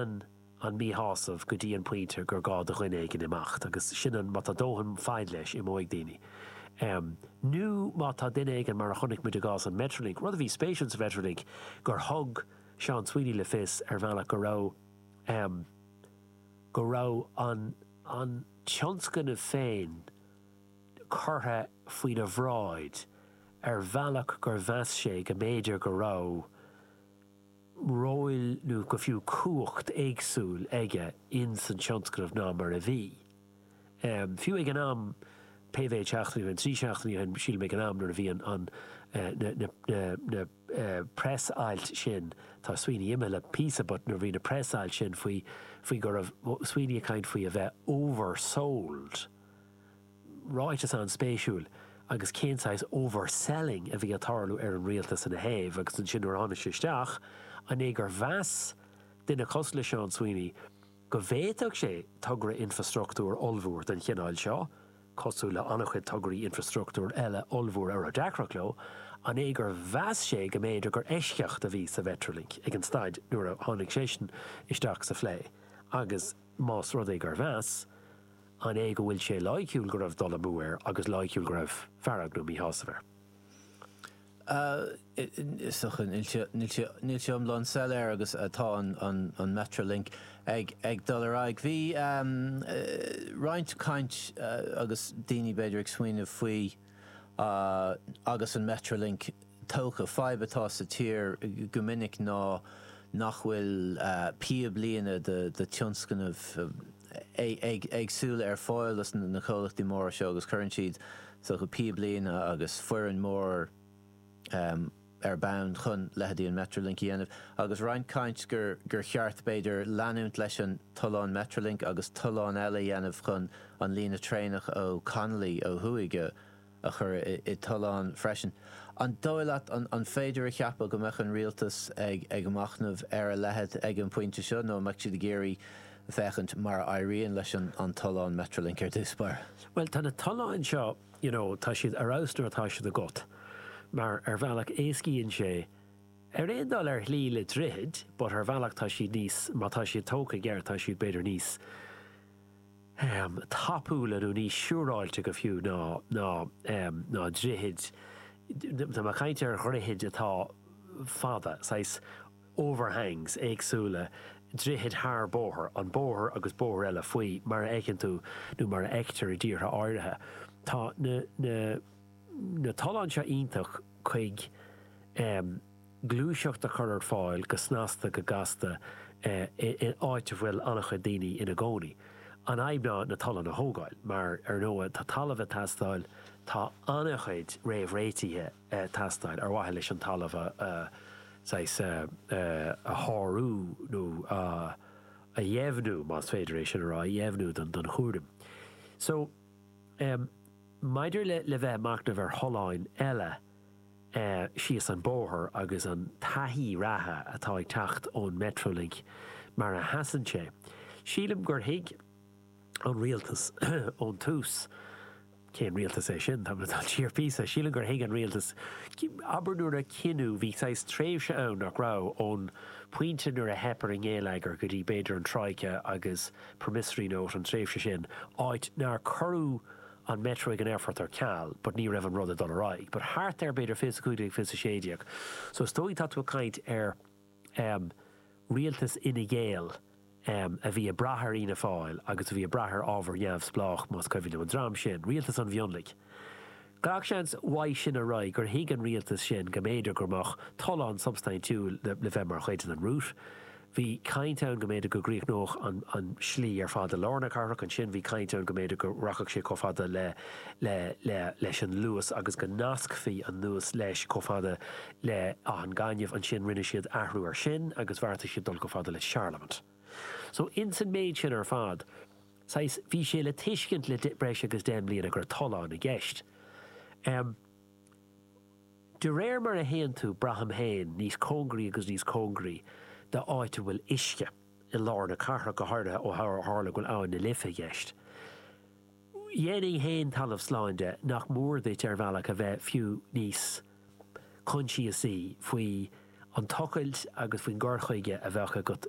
Leanann an míshásamh go dtí an pointe gur gá do dhuine éigin imeacht agus sin an, má tá dóthain faid leis, imeoidh daoine. Nó má tá duine éigin, mar a chonaic muid i gcás an Metrolink, rud a bhí spéisiúil sa Mhetrolink gur thug Seán Sweeney le fios ar bhealach go raibh go raibh an tionscnamh féin curtha faoina bhráid ar bhealach gur mheas sé go mb'fhéidir go raibh róil nó go fiú cumhacht éagsúil aige ins an tionscnamh ná mar a bhí. Fiú ag an am, pé mhéid seachtainí ó shin, trí seachtainí ó shin, sílim, ag an am nuair a bhí an, an, na press-ailt sin, tá Sweeney imithe le píosa but nuair a bhí na press-ailt sin faoi, faoi go raibh Sweeney ag caint faoi a bheith oversold, ráiteas an-spéisiúil agus cén saghas overselling a bhí ag tarlú ar an rialtas ina thaobh agus ansin nuair a tháinig sé isteach an é gur mheas duine cosúil le Seán Sweeney go bhféadfadh sé togra infreastruchtúir ollmhór den chineál seo, cosúil le an-chuid tograí infreastruchtúir eile ollmhóra a raibh deacrachtaí leo, an é gur mheas sé go mb'fhéidir gur eisceacht a bhí sa Mhetrolink ag an staid nuair a tháinig seisean isteach sa phlé agus más rud é gur mheas An é go bhfuil sé loighciúil go raibh dul amú air agus loighciúil go raibh fearg nó míshásamh air? So níl sé iomlán soiléir agus tá an Metrolink ag dul ar aghaidh. Bhí roinnt caint agus daoine b'fhéidir ag smaoineamh faoi agus an Metrolink tógtha. Fadhb atá sa tír go minic ná nach bhfuil píblíne de tionscnaimh éagsúla ar fáil do na comhlachtaí móra seo agus cuireann siad píblíne agus foireann mór ar bonn chun leitheidí an Metrolink a dhéanamh agus roinnt caint gur cheart b'fhéidir leanúint leis an tollán Metrolink agus tolláin eile a dhéanamh chun an líne traenach ó Connolly ó thuaidh a chur i dtollán freisin. An dóigh leat, an féidir a cheapadh go mbeadh an Rialtas ag machnamh ar a leithéid ag an bpointe seo nó an mbeadh siad ag iarraidh féachaint mar a éiríonn leis an tollán Metrolink ar dtús báire? Bhuel, tá na tolláin seo, you know, tá siad ar fheabhas nuair atá siad agat mar ar bhealach éascaíonn sé ar aon dul ar shlí le droichid but ar bhealach tá siad níos, má tá siad tógtha i gceart, tá siad b'fhéidir níos. tapúla nó níos siúráilte go fiú ná na droichid, tá mé ag caint ar dhroichid atá fada, saghas overhangs éagsúla, droichid thar bóthar, an bóthar agus bóthar eile faoi, mar a fheiceann tú nó mar a fheictear i dtíortha áirithe. Tá na tolláin seo iontach chuige. gluaiseacht a chur ar fáil go snasta go gasta in áit a bhfuil an-chuid daoine ina gcónaí. An fhadhb ná na tolláin a thógáil mar, ar ndóigh, tá talamh ag teastáil, tá an-chuid réamhréitithe ag teastáil ar mhaithe leis an talamh a saghas a shárú nó a dheimhniú, más féidir é sin a rá, a dheimhniú don chúram. So, maidir le bheith ag machnamh ar tholláin eile, síos an bóthar agus an taithí reatha atá ag teacht ón Metrolink mar a sheasann sé. Sílim gur thuig an Rialtas ón tús, cén Rialtas é sin, tá mé ag dul siar píosa, sílim gur thuig an Rialtas, abair nuair a cinneadh, bhí saghas tréimhse ann nach raibh, ón pointe nuair a theip ar an ngeilleagar go dtí b'fhéidir an Troika agus promissory note an tréimhse sin, áit nár cuireadh an Metro go dtí an aerfort ar ceal but ní raibh an rud ag dul ar aghaidh but thart ar b'fhéidir fiche is a cúig déag fiche is a sé déag so is dóigh tá tú ag caint ar em rialtas Fhine Gael em a bhí ag brath ar Fhianna Fáil agus a bhí ag brath ar ábhar neamhspleách más cuimhin liom an dream sin rialtas an mhionlaigh gach seans uaidh sin ar aghaidh gur thuig an rialtas sin go mb'fhéidir go mbeadh tollán substaintiúil le bheith mar chuid den route Bhí caint ann go mb'fhéidir go gcríochnódh an slí ar fad i lár na cathrach, ansin bhí caint ann go mb'fhéidir go rachadh sé chomh fada le leis an Luas agus go nascfaí an Luas leis chomh fada le Áth an Ghainimh, ansin rinne siad athrú ar sin agus bheartaigh siad dul chomh fada le Charlemont. So ins an méid sin ar fad, saghas, bhí sé le tuiscint le breis agus deich mbliana go raibh tollán i gceist. De réir mar a théann tú, braithim féin, níos cóngaraí agus níos cóngaraí d'áit a bhfuil uisce, i lár na cathrach, go háirithe ó tharla go bhfuil Abhainn na Life i gceist. Dhéanfainn féin talamh slán de nach mór duit ar bhealach a bheith fiú níos coinsiasaí faoi an tochailt agus faoin gcur chuige a bheadh agat.